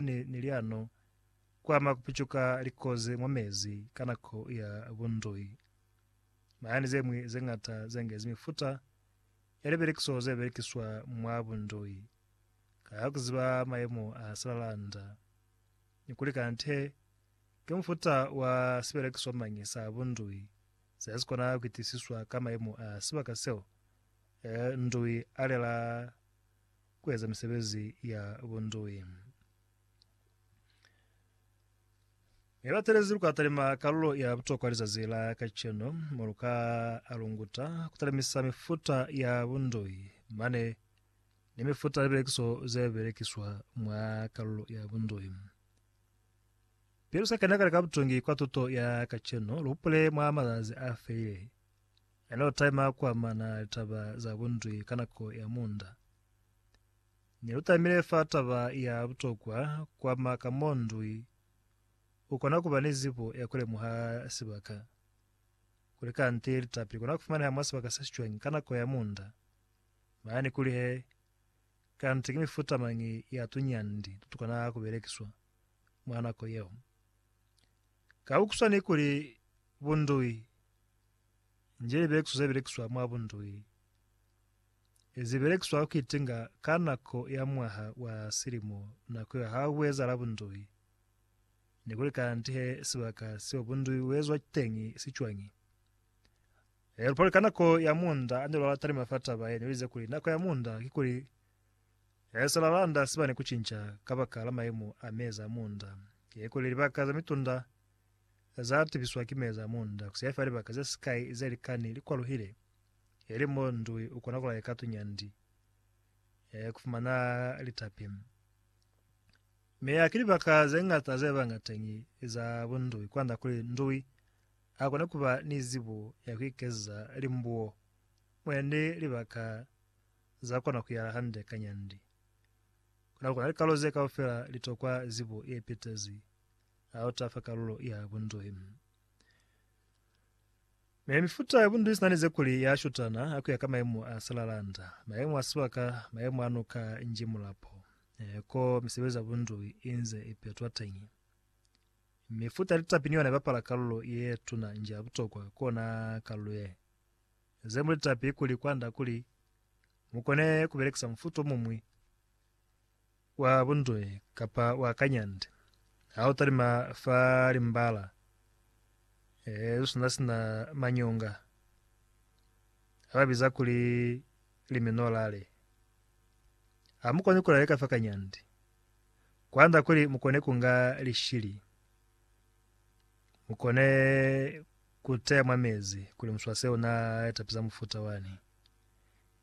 ne ni liano ku ama ku picuka likozi mwa mezi ka nako ya bundui. Mahani ze ñwi ze ñata ze ngezi mifuta ya liberekiso ze berekiswa mwa bundui ka ku ziba mayemo a silalanda ni kuli kante ki mufuta wa siberekiswa mañi sa bundui se si kona ku itisiswa ka mayemo a sibaka seo ndui a lela ku eza misebezi ya bunduwi. Mi ba telezi lu ka talima kalulo ya butokwa lizazi la kacenu, mo lu ka alunguta ku talimisa mifuta ya bunduwi mane ni mifuta ya libelekiso ze belekiswa mwa kalulo ya bunduwi. Pili lu sa kena kale ka butungi kwa tuto ya kacenu, lu hupule mwa mazazi a felile. Yellow time a kuamana litaba za bundwi ka nako ya munda. Ne lu tamile fa taba ya butokwa kuama ka mo ndwi u kona kuba ni zibo ya kulemuha sibaka, kuli kanti litapi likona kufumaneha mwa sibaka se sicwañi ka nako ya munda, mane ni kuli he kanti ki mifuta mañi ya tuñandi tutukona kubelekiswa mwa nako yeo. Ka ku swana ni kuli bundwi, nje libelekiso ze belekiswa mwa bundui ze belekiswa ka ku itinga ka nako ya mwaha wa silimo nako ya ha ku ezahala bundui, ne kuli kanti he sibaka seo bundui bu ezwa teñi si cwañi. He lu pali ka nako ya muunda ane lwa lata ni mafa taba ye ne uize kuli nako ya muunda ki kuli he se lwa landa siba ne ku cinca kabakala maimo a meza a muunda, ye kuli libaka ze mitunda za tibiswa ki meza mo nda ku saifa libaka ze sikai ze likani li kwaluhile, ili mo ndui u kona ku laika tunyandi e ku fumana litapi. Mi ha ki libaka ze ñata ze banga teñi za bundui kwand'a kuli ndui a kone ku ba ni zibo ya ku ikezeza limbuo, mwendi libaka za kona ku yala hande ka nyandi. Kono ku na likalo ze kaufela li tokwa zibo ye pitezi ha u tafa kalulo ya bunduhi. Me mifuta ya bunduhi sina ni ze kuli ya shutana ha kuya ka maemo a silalanda, maemo a sibaka, maemo a nuka nji mulapo, eh, ko misebezi ya bunduhi inze ipetwa teñi. Mifuta ya litapi ni yona ibapala kalulo ye tuna nji ya butokwa kona kalulo ye. Ze mu litapi kuli kwanda kuli mukone kubelekisa mufuta omuñwi, wa buntwe kapa wa kanyande, ha u talima fa limbala ee lu sina sina manyonga a ba biza kuli liminorale. Ha mu koni ku laleka fa kanyande, kwanda kuli mu kone ku nga lishili, mu kone ku teya mwa mezi kuli muswase una tapisa mufuta wani.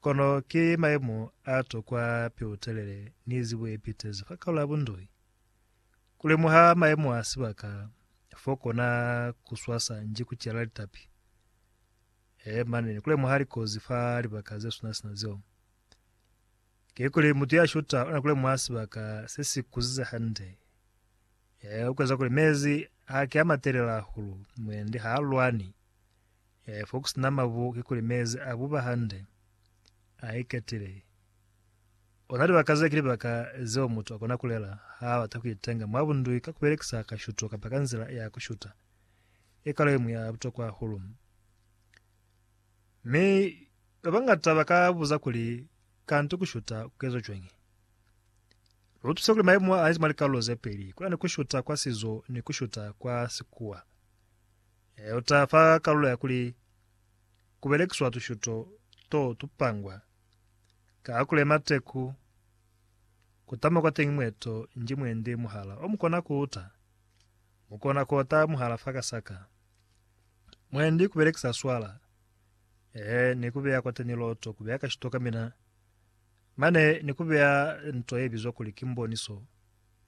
Kono ki mayemo a tokwa peutelele ni zibo ye pitezi fa kaula ya bundoi. Ku lemuha mayemo a sibaka fo kona ku swasa nji ku cela litapi. He, mane ni ku lemuha likozi fa libaka ze swana sina zeo. Kikuli mutu ya shuta ona ku lemuha sibaka se si kuzize hande. He, u kueza kuli mezi ha ke a matelele hahulu, mwendi ha a lwani. Ee, foku sina mabu kikuli mezi a buba hande, a iketile. Ona libaka ze ki libaka zeo mutu akona kulela ha abata kuitenga mwa bundwi ka kubelekisa kashuto kapa ka nzila ya kushuta. Ki kalo yeñwi ya butokwa hahulu. Mi babañata baka buza kuli, Kanti kushuta kuezwa cwañi? Lutuse kuli maimo a niti mwa likalulo zepeli, kunani kushuta kwa sizo ni kushuta kwa sikuwa. Ee, u ta fa kalulo ya kuli ku belekiswa tushuto to tupangwa ka kule mateku ku tama kwateñi mwe to nji mwendi muhala o mu kona ku uta. Mu kona ku ota muhala fa kasaka. Mwendi ku belekisa swala, ee, ni ku beya kwateñi loto, ku beya kashito ka mina, mane ni ku beya nto ye bizwa kuli ki mboniso,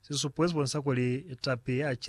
sisupo ye si bonisa kuli tapi ye a cela.